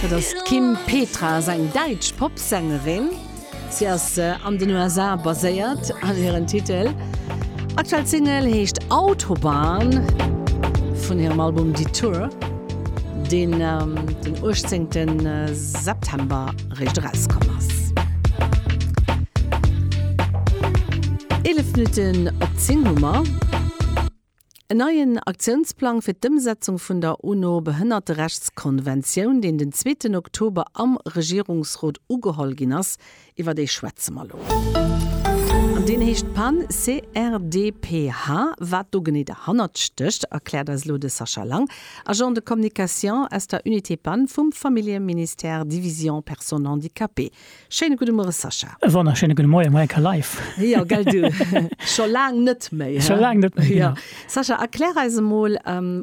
Dat ass d'Kim Petras, eng däitsch Popsängerin. Si ass an den USA baséiert an hiren Titel aktuell Single heescht Autobahn vun hirem Album Detour, deen den 18 September réischt erauskomm ass. 11 Minutten op 10 hu mer. En neien Aktiounsplang fir d'Ëmsetzung vun der UNO-Behënnerterechtskonventioun, deen den zweeten Oktober am Regierungsrot ugeholl ginn ass, iwwer dee schwätze mer elo. An deen heescht Pan CRDPH. Wat do genee derhannert stécht, erkläert eis elo de Sascha Lang, Agent de communication aus der Unité Pan vum Familljeministère, Division Personnes handicapées. Schéine gudde Muere Sascha. E wonnerschéine gudde Moien, America Live! Jo, gell du, scho laang net méi, he? Scho laang net méi, genau. Jo. Sascha, erklär eis emol,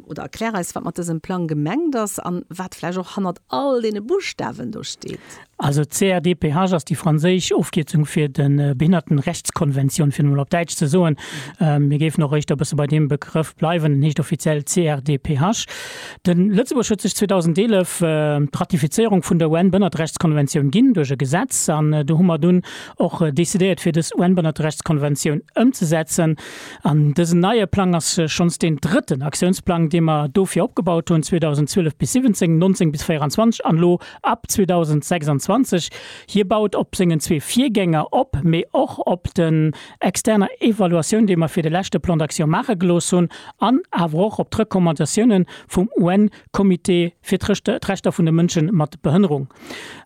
oder erklär eis, wat mat dësem Plang gemengt ass an wat vläicht och hannert all deene Buschtawen do steet. Also d'CRDPH ass déi franséisch Ofkierzung fir de Behinnertenrechtskonventioun, fir et emol op Däitsch ze soen. Mir géifen och eréischt e bësse bei deem Begrëff bleiwen, en heescht offiziell CRDPH. De Lëtzebuerg huet sech 2011 d'Ratifizéierung vun der UN-Bënnertrechtskonventioun ginn, duerch e Gesetz. An do hu mer dunn och decidéiert, fir dës UN-Bënnertrechtskonventioun ëmzesetzen. An dësen neie Plang ass schonns deen drëtten Aktiounsplang, dee mer dofir opgebaut hunn, 2012 bis 17, 19 bis 24 an elo ab 2026. Hie baut op sengen zwee Virgänger op, mee och op de externer Evaluatioun, déi mer fir de leschte Plan d'action maache gelooss hunn, an awer och op d'Recommandatiounen vum UN-Comité fir d'Rechter vun de Mënsche mat Behënnerung.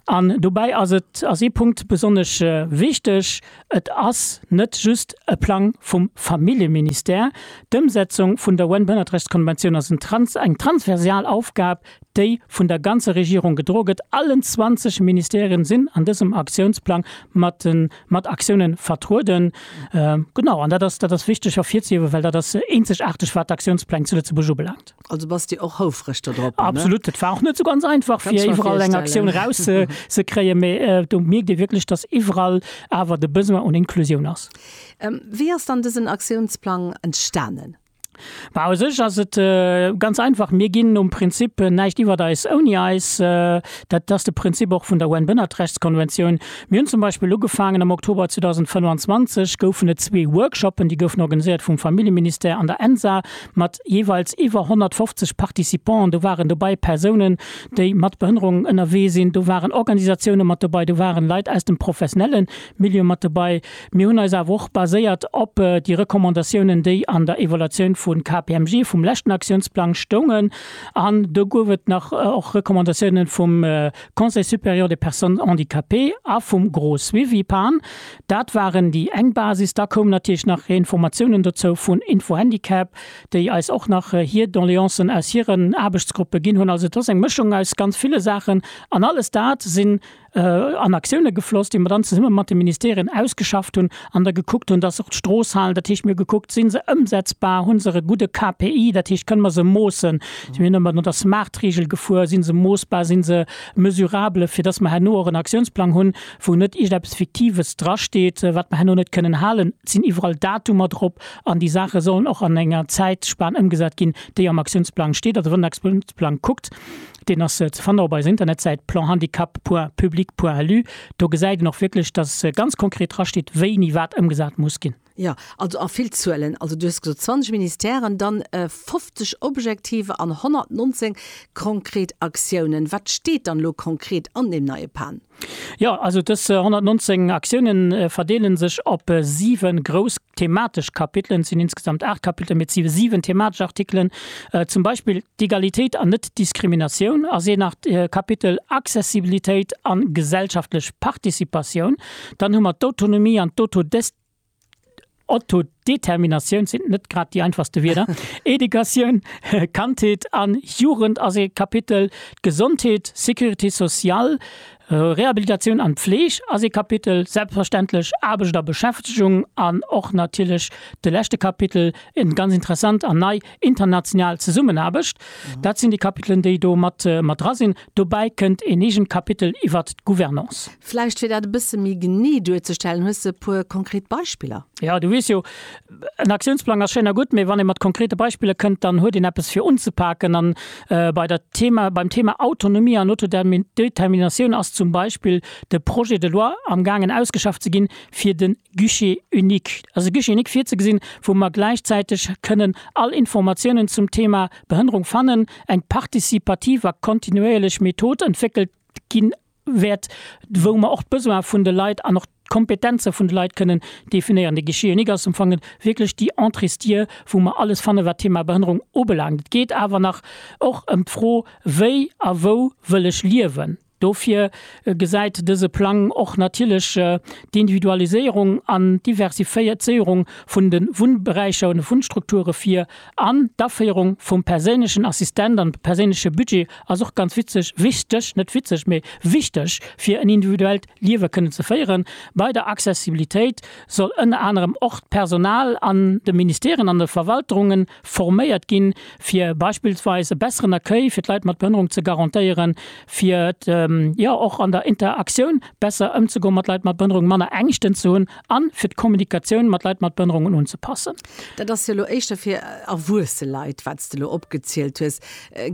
An dobäi ass et, ass ee Punkt besonnesch wichteg, et ass net just e Plang vum Familljeministère. D'Ëmsetzung vun der UN-Behënnertrechtskonventioun ass en trans-, eng transversal Aufgab, déi vun der ganzer Regierung gedro gëtt, allen 20 Ministèrien sinn an dësem Aktiounsplang mat mat Aktioune vertrueden. Genau, an dat ass dat ass wichteg ervirzehiewen, well dat ass eenzegaarteg wat d'Aktiounspläng zu Lëtzebuerg ubelaangt. Also bass Dir och houfreg do drop? Absolut, et war och net esou ganz einfach fir iwwerall eng Aktioun eraus ze ze kréien, mee do mierkt ee wierklech, datt iwwerall awer de Besoin un Inklusioun ass. Wéi ass dann dësen Aktiounsplang entstanen? Mä u sech ass et ganz einfach, Mir ginn nom Prinzip näischt iwwert eis ouni eis. Dat ass de Prinzip och vun der UN-Bënnertrechtskonventioun. Mir hunn zum Beispill ugefaangen, am Oktober 2025 goufen et zwee Workshoppen, déi goufen organiséiert vum Familljeministère an der ENSA mat jeeweils iwwer 150 Participanten. Do waren dobäi Persounen, déi mat Behënnerung ënnerwee sinn, do waren Organisatioune mat dobäi, do ware Leit aus dem professionelle Milieu mat dobäi. Mir hunn eis awer och baséiert op déi Recommandatiounen, déi an der Evaluatioun vu KPMG vum leschten Aktiounsplang stoungen. An do gouf et nach och Recommandatiounen vum Conseil supérieur des personnes handicapées a vum Gros Suivi, pan. Dat waren déi eng Basis. Da koumen natierlech nach Informatiounen dozou vun Info Handicap, déi eis och nach hir Doleancen aus hiren Aarbechtsgruppe ginn hunn. Also et ass eng Mëschung aus ganz ville Saachen. An alles dat sinn an Aktioune gefloss, déi mer dann zesumme mat de Ministerien ausgeschafft hunn an da gekuckt hunn, dass och d'Stroossalen, dat heescht mir hu gekuckt, si se ëmsetzbar, hu se e gudde KPI, dat heescht kënne mer se moossen, si mir ëmmer no der Smart-Reegel gefuer, si se moossbar, si se mesurable, fir dass mer herno och en Aktiounsplang hunn, wou net iergendeppes Fiktives drasteet, wat mer herno net kënnen halen. Et sinn iwwerall Datumer drop an déi Saache sollen och an enger Zäitspan ëmgesat ginn, déi am Aktiounsplang steet, also wann den Aktiounsplang kuckt, Deen ass ze fannen op eiser Internetsäit planhandicap.public.lu. Do gesäit een och wierklech, dass ganz konkret drasteet, wéini wat ëmgesat muss ginn. Jo, also a vill Zuelen. Also du hues gesot 20 Ministèren, dann 50 Objektiver an 119 konkret Aktiounen. Wat steet dann elo konkret an deem neie Pan? Jo, also dës 119 Aktioune verdeele sech op 7 grouss thematesch Kapitelen. Et sinn insgesamt 8 Kapitelen, mee et si 7 thematesch Artikelen. Zum Beispill d'Egalitéit an Net-Diskriminatioun ass een Kapitel, Accessibilitéit an gesellschaftlech Participatioun. Dann hu mer d'Autonomie an d'Autodestinatioun. Autodeterminatioun sinn net grad déi einfachste Wierder. Educatioun, Kandheet an Jugend ass ee Kapitel, Gesondheet, Sécurité sociale, Rehabilitatioun an Pfleeg ass ee Kapitel, selbstverständlech Aarbecht a Beschäftegung an och natierlech de leschte Kapitel, en ganz interessant an nei, international Zesummenaarbecht. Dat sinn déi Kapitelen, déi do mat dra sinn. Dobäi kënnt een eegent Kapitel iwwert d'Gouvernance. Vläicht fir dat e bësse méi genee duerzestellen, hues de e puer konkret Beispiller? Jo, du weess jo, en Aktiounsplang ass schéin a gutt, mee wann ee mat konkrete Beispiller kënnt, dann huet een eppes fir unzepaken. A bei der Thema, beim Thema Autonomie an Autodeterminatioun ass zum Beispill de Projet de loi amgaangen ausgeschafft ze ginn, fir de Guichet unique, also e Guichet unique virzugesinn, wou mer gläichzäiteg kënnen all Informatiounen zum Thema Behënnerung fannen, eng participativ a kontinuéierlech Method entwéckelt ginn, wäert, wou mer och d'Besoin vun de Leit an och d'Kompetenze vun de Leit kënnen definéieren. De Guichet unique ass amfong wierklech déi Entréesdier, wou mer alles fanne wat d'Thema Behënnerung ubelaangt. Et geet awer nach och ëm d'Fro, wéi a wou wëll ech liewen. Dofir gesäit dëse Plang och natierlech d'Individualiséierung an d'Diversifizéierung vun de Wunnberäicher, vun de Wunnstrukture vir. An d'Aféierung vum perséinlechen Assistent an perséinleche Budget ass och ganz witzeg, wichteg, net witzeg, mee wichteg, fir en individuellt Liewe kënnen ze féieren. Bei der Accessibilitéit soll ënner anerem och d'Personal an de Ministèren an de Verwalterunge forméiert ginn, fir beispillsweis e besseren Accueil fir d'Leit mat Behënnerung ze garantéieren, fir jo och an der Interaktioun besser ëmzegoen mat Leit mat Behënnerung, manner Ängschten ze hunn an fir d'Kommunikatioun mat Leit mat Behënnerungen unzepassen. Dat ass jo elo éischter fir erwuesse Leit, wat s de elo opgezielt hues.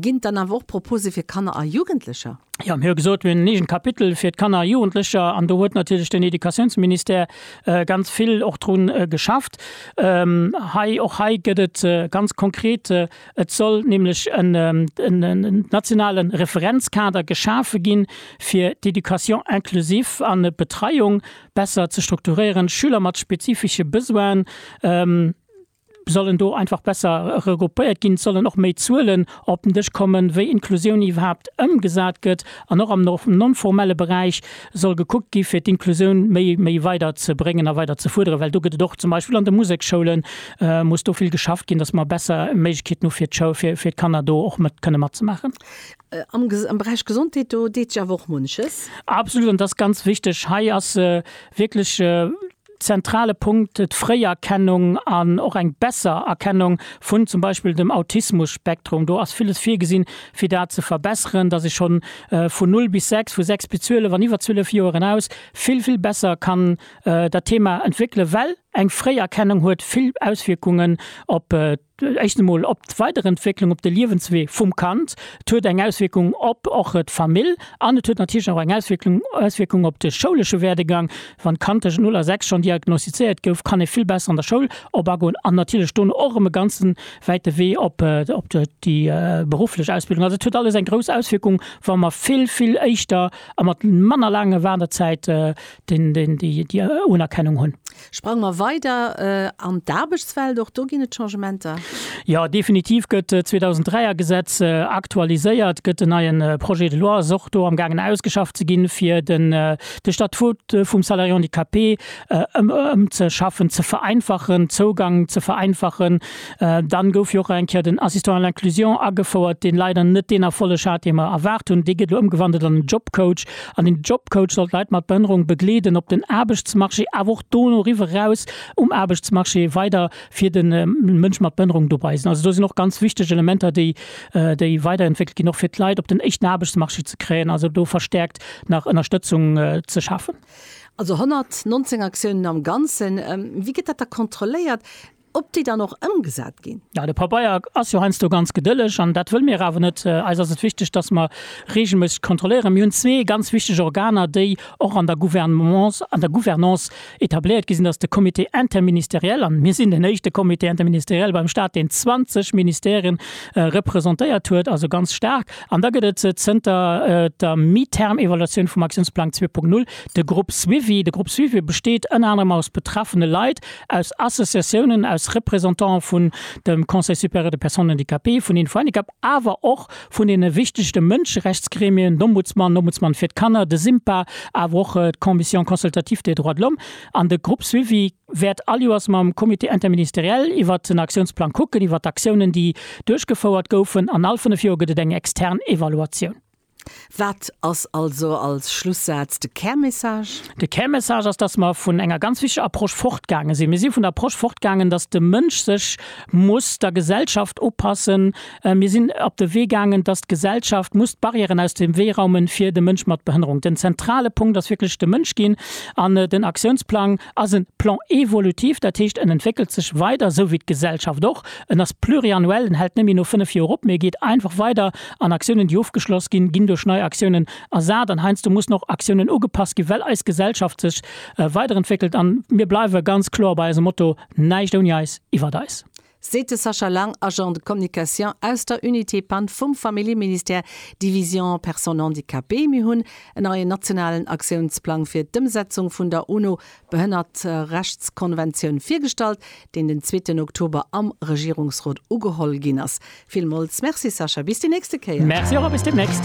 Ginn et dann awer och Proposë fir Kanner a Jugendlecher? Jo, mir hu gesot, mir hunn en eegent Kapitel fir d'Kanner a Jugendlecher an do huet natierlech den Educatiounsministère ganz vill och dru geschafft. Hei, och hei gëtt et ganz konkret, et soll nämlech en nationale Referenzkader geschafe ginn, fir d'Education inclusive an d'Betreiung besser ze strukturéieren. Schüler mat spezifische Besoinen sollen do einfach besser regroupéiert ginn. Et sollen och méi Zuelen op den Dësch kommen, wéi Inklusioun iwwerhaapt ëmgesat gëtt an och am non-formelle Beräich soll gekuckt gi fir d'Inklusioun méi méi weider ze bréngen a weider ze fuerderen. Well do gëtt et och zum Beispill an de Museksschoule muss do vill geschafft ginn, datt mer besser Méiglechkeeten hu fir d'Kanner do och kënne matzemaachen. Am Beräich Gesondheet, do deet sech awer och munches. Absolut, an dat ass ganz wichteg. Hei ass e wierklech zentrale Punkt d'Fréierkennung an och eng besser Erkennung vun zum Beispill dem Autismus-Spektrum. Do ass villes virgesinn, fir dat ze verbesseren, dass ee schonn vun null bis sechs, vu sechs bis zwielef an iwwer zwielef Joer eraus vill, vill besser kann dat Thema entwéckelen, well eng Fréierkennung huet vill Auswierkungen op Éischt emol op d'Weiderentwécklung, op de Liewenswee vum Kand. Et huet eng Auswierkung op och d'Famill an et huet natierlech och eng Auswierklung, Auswierkung op de schoulesche Werdegang. Wann d'Kand tëschent null a sechs schonn diagnostizéiert gouf, kann e vill besser an der Schoul op agoen an natierlech dono och erëm e ganze wäite Wee op, op déi berufflech Ausbildung. Also et huet alles eng grouss Auswierkung, wa mer vill, vill éischter a mat manner laanger Waarderzäit déi Unerkennung hunn. Sprange mer weider an d'Aarbechtswelt. Och do ginn et Changementer? Jo, definitiv gëtt d'Zweetausenddräi er Gesetz aktualiséiert, gëtt en neien Projet de loi, ass och do amgaangen ausgeschafft ze ginn, fir den de Statut vum Salarié handicapé ëmzeschaffen, ze vereinfachen, Zougang ze vereinfachen, Dann gouf jo och eng Kéier den Assistant à l'inclusion agefouert, deen leider net deen Erfolleg hat, deen mer erwaart hunn. Dee gëtt elo ëmgewandelt an en Jobcoach. An den Jobcoach soll d'Leit mat Behënnerung begleeden op den Aarbechtsmarché, awer och do no riwwer raus um Aarbechtsmarché weider fir de Mënsch mat Behënnerung dobei sinn. Also do sinn och ganz wichteg Elementer, déi, déi weiderentwéckelt ginn, och fir d'Leit op den éischten Aarbechtsmarché ze kréien, also do verstärkt nach Ënnerstëtzung ze schafen. Also 119 Aktiounen am Ganzen. Wéi gëtt dat da kontrolléiert? ob déi dann och ëmgesat ginn. Jo, de Pabeier ass jo heiansdo ganz gedëlleg an dat wëlle mir awer net. Eis ass et wichteg, dass mer reegelméisseg kontrolléieren. Mir hunn zwee ganz wichteg Organer, déi och an der Gouvernance, an der Gouvernance etabléiert gi sinn. Dat ass de Comité interministériel an mir sinn den éischte Comité interministériel beim Stat, deen 20 Ministèren representéiert huet, also ganz staark. An da gëtt et zënter der Mi-term-Evaluatioun vum Aktiounsplang zwee Punkt null de Groupe suivi. De Groupe suivi besteet ënner anerem aus betraffene Leit, aus Associatiounen, aus Représentanten vun dem Conseil supérieur des personnes handicapées, vun Info-Handicap, awer och vun deene wichtegste Mënscherechtsgremien, d'Ombudsman, Ombudsman fir d'Kanner, de SIMPA, awer och d'Commission consultative des droits de l'homme. An de Groupe Suivi wäert aljoers mam Comité interministériel iwwert den Aktiounsplang kucken, iwwert d'Aktiounen, déi duerchgefouert goufen. An all fënnef Joer gëtt et eng extern Evaluatioun. Wat ass also als Schlussaz de Kärmessage? De Kärmessage ass, dass mer vun enger ganz wichteger Approche fortgaange sinn. Mir si vun der Approche fortgaangen, dass de Mënsch sech muss der Gesellschaft upassen. Mir sinn op de Wee gaangen, dass d'Gesellschaft muss d'Barrièren aus dem Wee raumen, fir de Mënsch mat Behënnerung. Den zentrale Punkt ass wierklech de Mënsch ginn an den Aktiounsplang. ass en Plan évolutif, dat heescht en entwéckelt sech weider, esou wéi d'Gesellschaft och. En ass pluriannuel, en hält net méi no fënnef Joer op, mee e geet einfach weider an Aktiounen, déi ofgeschloss ginn, ginn duerch nei Aktiounen ersat an heiansdo mussen och Aktiounen ugepasst ginn, well eis Gesellschaft sech weiderentwéckelt. An mir bleiwe ganz kloer bei eisem Motto, Näischt ouni eis, iwwert eis. seet de Sascha Lang, Agent de communication aus der Unité Pand vum Familljeministère, Division Personnes handicapées. Mir hunn en neien nationalen Aktiounsplang fir d'Ëmsetzung vun der UNO-Behënnertrechtskonventioun virgestallt, deen den zweeten Oktober am Regierungsrot ugeholl ginn ass. Villmools Merci Sascha, bis déi nächste Kéier! Merci och a bis deemnächst!